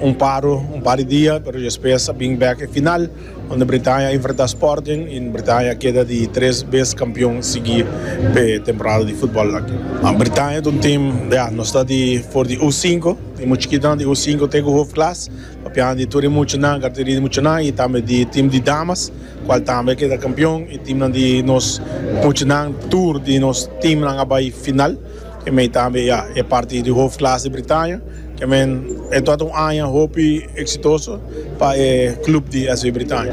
Un paro, un par di dia, pero despues a bin bek e final, onde Bretaña a enfrenta Sporting y Bretaña keda di tres bes campeon sigui p'e temporada di futbol aki. Bretaña ta un team, ya, nos ta di for di U sinku, e mucha chikinan di U sinku te ku Hoofdklasse, papiando di tur e muchanan, categoria di muchanan y tambe di team di damas, cual tambe a keda campeon y teamnan di nos muchanan, tur di nos teamnan a bai final. E mei tambe ya e parti di Hoofdklasse di Britanje, ke men e tabata un aña hopi eksitoso pa e klub di SV Britanje.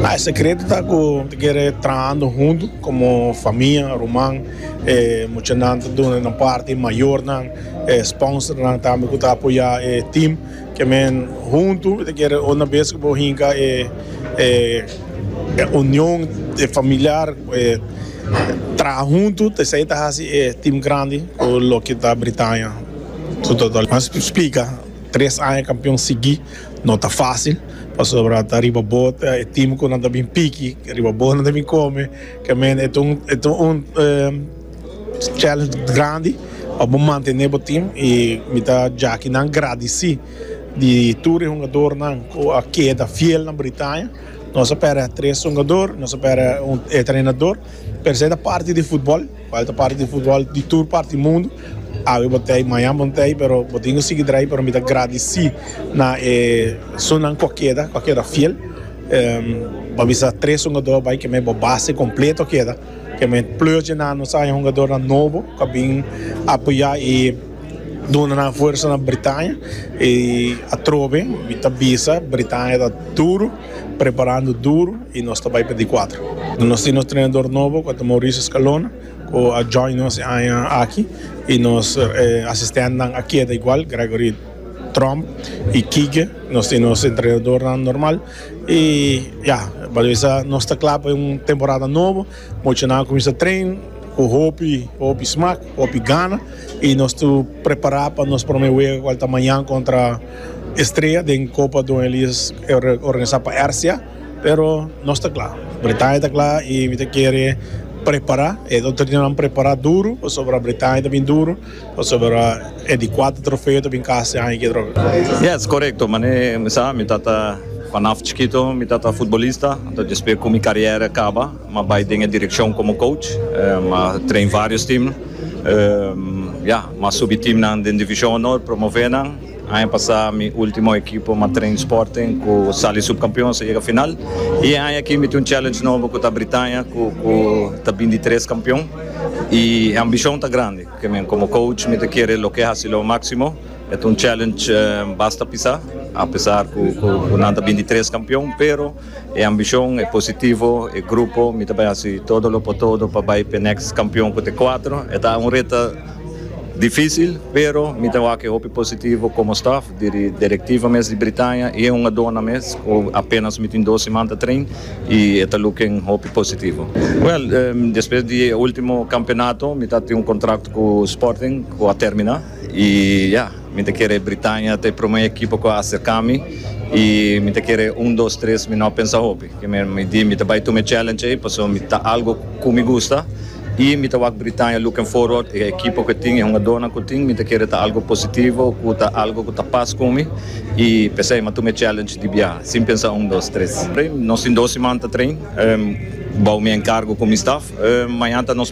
E sekreto ta ku mi ta kere trahando huntu komo famia, ruman, e muchanan ta duna nan parti, mayornan, e sponsornan tambe ku ta apoyá e tim. Ke men huntu ta kere una bes ku bo hinka e union familiar, e traha huntu, esei ta hasi e tim grandi ku lo ke ta Britaña su total. Mas splika, tres aña kampion sigui no ta fásil, pasobra ta riba bo ta e tim ku nan ta bin piki, riba bo nan ta bin kome, ke men e ta un. challenge grandi pa bo mantene bo team y mi ta jaki nan gradeci di tur e hungador nan cu a keda fiel na Britania nos a perde tres hungador nos a perde e trenador pero esai ta parti di football cual ta parti di football di tur parti mundo awe bo tey maña bo tey pero bo tin cu sigui draai pero mi ta gradeci na e su nan cu a keda cu a keda fiel pa bisa tres hungador bay keme bo base completo a keda. Ke mi pleurtje na nos aña hungadornan nobo ku a bin apoyá i duna nan fuersa na Britania. I atrobe mi ta bisa Britania ta duru preparando duru i nos ta bai pa di kuater. Nos tin nos trenador nobo ku a ta Mauricio Scalona ku a join nos e aña aki i nos asistentnan a keda igual Gregory Tromp i Kike. Nos tin nos entrenadornan normal. I ya, Baloesa nos ta kla pa un temporada nobo. Mochonan a kuminsá tren ku hopi hopi smak, hopi gana i nos ta prepará pa nos promé wega ku ta mañan kontra Estrella den Kopa Don Elias organisá pa Ersia. Pero nos ta kla, Bretaña ta kla i mi ta kere prepará. E otro dinanan prepará duru pasobra Bretaña ta bin duru. Pasobra e di kuater trofeo ta bin kas e aña kidròp. Yes, korekto. Manera e mi sa, mi tata, panaf chikito mi tata futbolista, anto despues ku mi karièra kaba m'a bai den e direkshon komo kouch, m'a train vários tim, m'a subi timnan den divishon onor, promové nan. Aña pasá mi último ekipo Matrain Sporting ku sali supkampion sa yega final i e aña aki mi tin un challenge nobo ku ta Britania ku ta bin di tres kampion i e ambishon ta grandi pasobra mi komo coach mi ta kere loke hasi lo máksimo. E ta un challenge basta pisá apesar ku nan ta bin di tres kampion pero. E ambishon, e positivo, e grupo, mi ta bai hasi todo lo por todo pa bai p'e next kampion ku ta e kuater. E ta un reta difísil, pero mi ta wak e hopi positivo komo staf, diri direktiva mes di Britania i e hungadónan mes ku apénas mi tin dos siman ta train i e ta luk'en hopi positivo. Wèl, despues di e último kampionato mi ta tin un kontrakto ku Sporting ku a terminá. I ya, mi ta kere Britania ta e prome ekipo ku a aserka mi, i mi ta kere un, dos, tres, mi no pensa hopi. Ke men mi di mi ta bai tuma e challenge ei, paso mi ta algu ku mi gusta, i mi ta wak Britania looking forward, e ekipo ku e tin, e hungadónan ku tin, mi ta kere ta algu positivo, ku ta algu ku ta pas ku mi, i p'esei mi a tuma e challenge di biaha, sin pensa un, dos, tres. Nos tin dos siman ta train, bou mi enkargo ku mi staf, mañana ta nos.